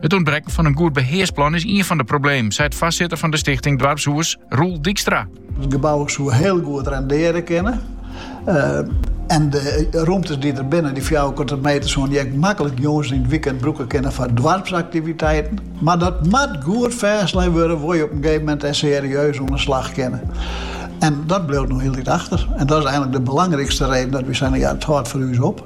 It ûntbrekken fan in goed behearsplan is ien fan de problemen, seit foarsitter fan de stichting Doarpshûs, Roel Dykstra. It gebou soe hiel goed rendearje kinne. En de rûmtes dy't der binne, dy fjouwerkante meter, soene dy ek maklik jûns yn it wykend brûke kinne foar doarpsaktiviteiten. Mar dat moat goed fêstlein wurde wolle je op in gegeven moment dêr serieus oan de slach kinne. En dat bliuwt no hieltyd achter. En dat is eigenlik de belangrykste reden dat wy sizze, ja, it hâldt foar ús op.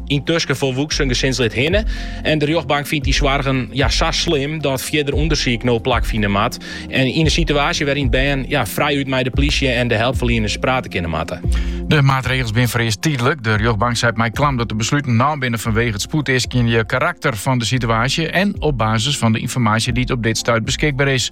Yntusken folwoeksen gesinslid hinne en de rjochtbank fynt dy soargen ja, sa slim dat fierder ûndersyk no plakfine moat. En yn in situaasje wêryn't bern ja, frijút mei de plysje en de helpferlieners prate kinne moatte. De maatregels binne foarearst tydlik. De rjochtbank seit mei klam dat de besluten naam binne fanwegen it spoedeaskjende karakter fan de situaasje en op basis fan de ynformaasje dy't op dit stuit beskikber is.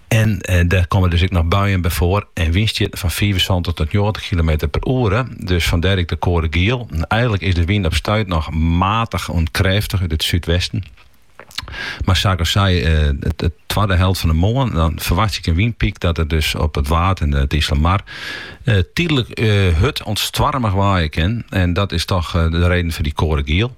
En dêr komme dus ek noch buien by foar en wynstjitten fan fiifensantich tot njoggentich kilometer per oere. Dus fandêr ek de koade giel. Eigenlik is de wyn op stuit noch matich oant krêftich út it súdwesten. Mar sa't ik sei de twadde helte fan de moarn dan ferwachtsje ik in wynpyk dat der dus op it Waad en it Iselmar tydlik hurd oant stoarmich waaie kin. En dat is toch de reden foar dy koade giel.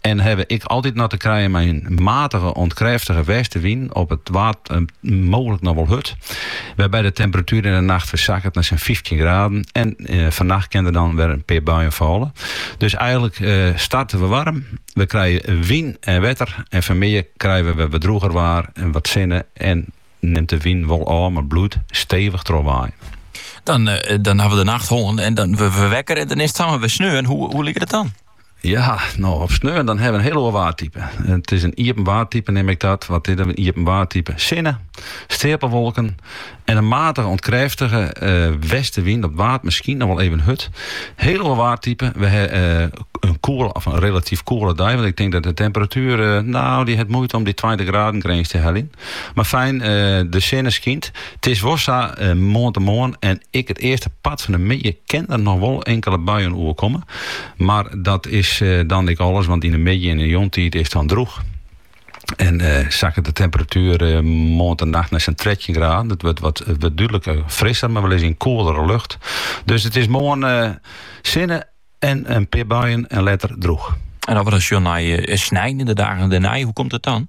en ha we ek altyd noch te krijen mei in matige oant krêftige westewyn, op it Waad eh, mooglik noch wol hurd, wêrby't de temperatuer yn de nacht wer sakket nei sa'n fyftjin graden en eh, fannacht kin der dan wer in pear buien fâle. Dus eigenlik eh, starte we warm, we krije wyn en wetter en fanmidden krije we wer wat drûger waar en wat sinne en nimt de wyn wol ôf, mar bliuwt stevich trochwaaien. Dan, eh, dan ha we de nacht hân en dan wurde we wekker en dan is it samar wer sneon. En hoe, hoe liket it dan? Ja, no op sneon dan hawwe we in heel oar waartype. It is in iepen waartype neam ik dat. Wat is dat, in iepen waartype? Sinne, steapelwolken en in matige oant krêftige eh, westewyn. Op it Waad miskien noch wol even hurd. Heel oar waartype. We hawwe eh, in koele of in relatyf koele dei. Want ik tink dat de temperatuer, eh, no, dy hat muoite om dy tweintich graden grins te heljen. Mar fijn, de sinne skynt. 't is wol sa, moarntemoarn en ek it earste part fan de middei kin der noch wol inkele buien oerkomme. Mar dat is dan ek alles, want yn de middei en de jûntiid is it dan drûch. En sakket de temperatuer moarntenacht nei sa'n trettjin graden. It wurdt dúdlik frisser, mar we lizze yn koelere lucht. Dus it is moarn sinne en in pear buien en letter drûch. En as we dan sjoen nei snein en de dagen dêrnei, hoe komt it dan?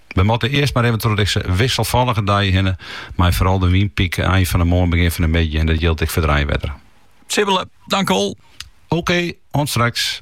We moatte earst mar even troch dizze wisselfallige dei hinne, mei foaral de wynpyk ein fan 'e moarn begjin fan 'e middei en dat jildt ek foar de rein, wetter. Sibbele, dankewol. Oké, oant straks.